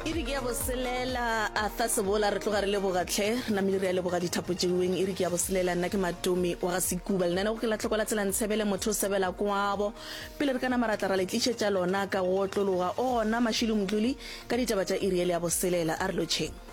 iri ke ya boselela arthur sebola re tloga re lebogatlhe re namele re ya leboga dithapo jeuweng iri ke ya boselela nna ke matomi wa ga sekuba lenane go ke latlhoko la tsela ntshebele motho o sebela kwabo pele re ka nama ratla ra le tlišetša lona ka go otlologa o gona mašilo motloli ka ditaba tša iri ele ya boselela a re lotšheng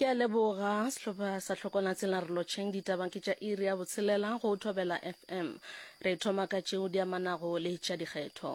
Ke a leboga. Sehlopha sa Hlokwana Tsela re lotšheng ditabang ke tša iri ya botshelela go Thobela FM. Re thoma ka tšeo di amanago le tša dikgetho.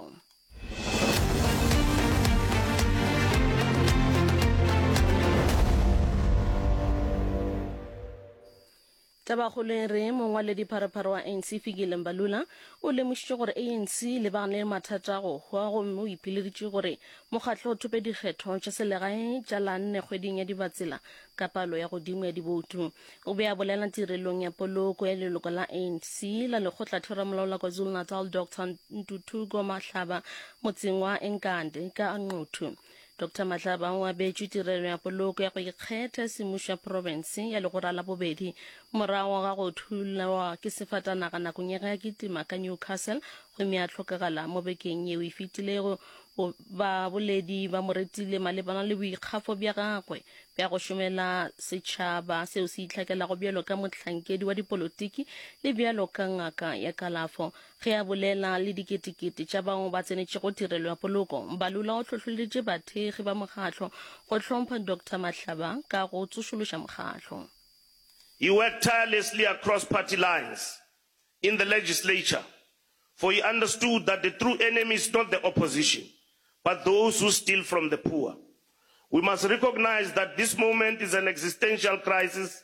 Tabakgolo e re, mongwaledipharopharo wa ANC Fikile Mbalula o lemošitše gore ANC e lebagane le mathata a go hwa gomme o ipileditše gore mokgatlo o thope dikgetho tša selegae tša la nne kgweding ya Dibatsela ka palo ya godimo ya diboutu. O be a bolela tirelong ya poloko ya leloko la ANC la lekgotlatheramolao la KwaZulu-Natal Doctor Ntuthuko Mahlaba motseng wa Enkande ka Nquthu. Dr Matlaba o abetšwe tirelo ya poloko ya go ikgetha semušo ya province ya legora la bobedi morago ga go thulwa ke sefatanaga nakong ya ge a kitima ka Newcastle gomme a hlokagala mo bekeng yeo e fetilego. Baboledi ba mo retile malebana le boikgafo bja gagwe bja go šomela setšhaba seo se itlhakelago bjalo ka mohlankedi wa dipolotiki le bjalo ka ngaka ya kalafo Ge a bolela le diketekete tša bao ba tsenetšego tirelo ya poloko, Mbalula o hlohloleditše bathekgi ba mokgahlo go hlompha Doctor Mahlaba ka go tsošološa mokgahlo. He worked tirelessly across party lines in the legislature for he understood that the true enemy is not the opposition but those who steal from the poor. We must recognise that this moment is an existential crisis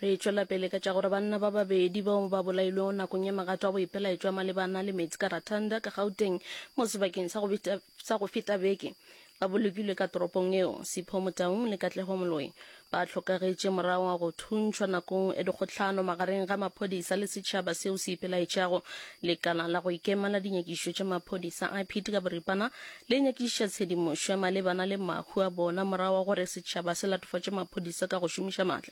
Re tšwela pele ka tša gore banna ba babedi bao ba bolailwego nakong ya magato a boipelaetšwa malebana le meetse ka Ratanda, ka Gauteng, mo sebakeng sa go feta, sa go feta beke, ba bolokilwe ka toropong eo. Sipho Motaung le Katlego Moloi ba hlokagetše morago ga go thuntšhwa nakong ya dikgohlano magareng ga maphodisa le setšhaba seo se ipelaetšago. Lekala la go ikema la dinyakišišo tša maphodisa, IPID ka boripana, le nyakišiša tshedimošo malebana le mahu a bona morago ga gore setšhaba se latofatše maphodisa ka go šomiša matla.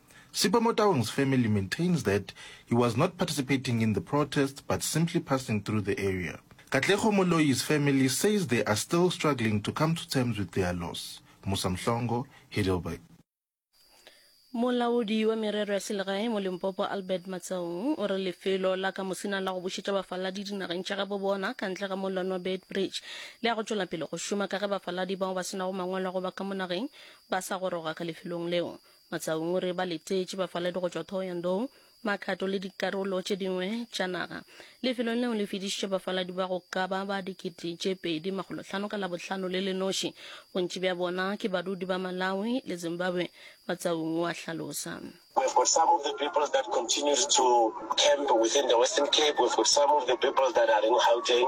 Sipho Motaung's family maintains that he was not participating in the protests but simply passing through the area. Katlego Moloi's family says they are still struggling to come to terms with their loss. Musa Mhlongo, Heidelberg. Molaodi wa merero ya selegae mo Limpopo Albert Matsaung o re lefelo la ka mosina la go bušetša bafaladi dinageng tša gabo bona ka ntle ga mollwane wa Beitbridge le ya go tšwela pele go šoma ka ge bafaladi bao ba senago mangwalo a go ba ka mo nageng ba sa goroga ka lefelong leo. Matsaunguri ba letetše bafaledi go tšwa Thohoyandou, Makhato le dikarolo tše dingwe tša naga. Lefelo leo le fedišitše bafaladi ba go ka ba ba dikete tše pedi makgolo hlano ka Labohlano le le noši. Bontši bja bona ke badudi ba Malawi le Zimbabwe, Matsaungu a hlalosa. We've got some of the people that continues to camp within the Western Cape, we've got some of the people that are in Gauteng.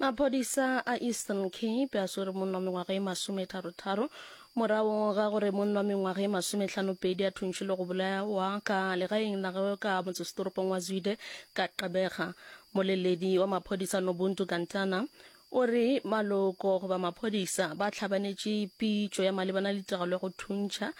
maphodisa a eastern cape a swere monna wa mengwaga e masometharotharo morago ga gore monna wa mengwaga e masometlhanopedi a thuntšhi le go bolawa ka legaeng la gagwe ka motsesetoropong wa zwide ka qebega moleledi wa maphodisa nobuntu kantana o re maloko goba maphodisa ba tlhabanetše pitšo ya malebana le tiragalo ya go thuntšha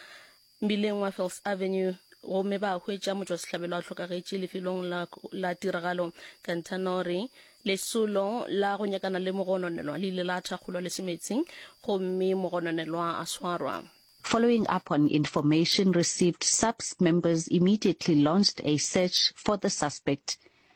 mmileng wa Fils Avenue gomme ba hwetša motšwasehlabelo a hlokagetše lefelong la, la tiragalo. Kantanori, lesolo la go nyakana le mogononelwa le ile la thakgolwa le semetsing gomme mogononelwa a swarwa. Following up on information received SAPS members immediately launched a search for the suspect.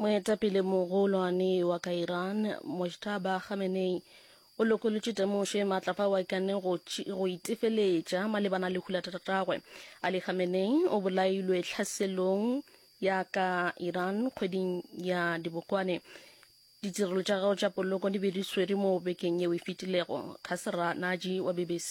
moetapele mogolwane wa ka iran mojtaba khamenei o lokolotše temošo e maatla fao a ikanne go, go itefeletša malebana le hula tatagwe ali khamenei o bolailwe tlhaselong ya ka iran kgweding ya dibokwane ditirelo tša gago tša poloko di be di swere mo bekeng yeo e fetilego khasra naji wa bbc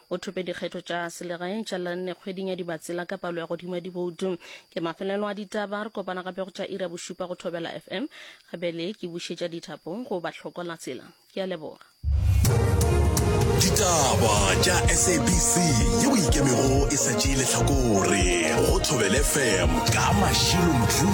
o thope dikgetho tša selegae tša lanne kgweding ya dibatsela ka palo ya godimo ya diboutu ke mafelelo a ditaba re kopana gape go tša ira bošupa go thobela fm gabele ke bušetša dithapo go ba tlhokola tsela ke a leboga ditaba tša sabc yeo ikemego e sa tšee letlhakore go thobele fm ka mašilo mdru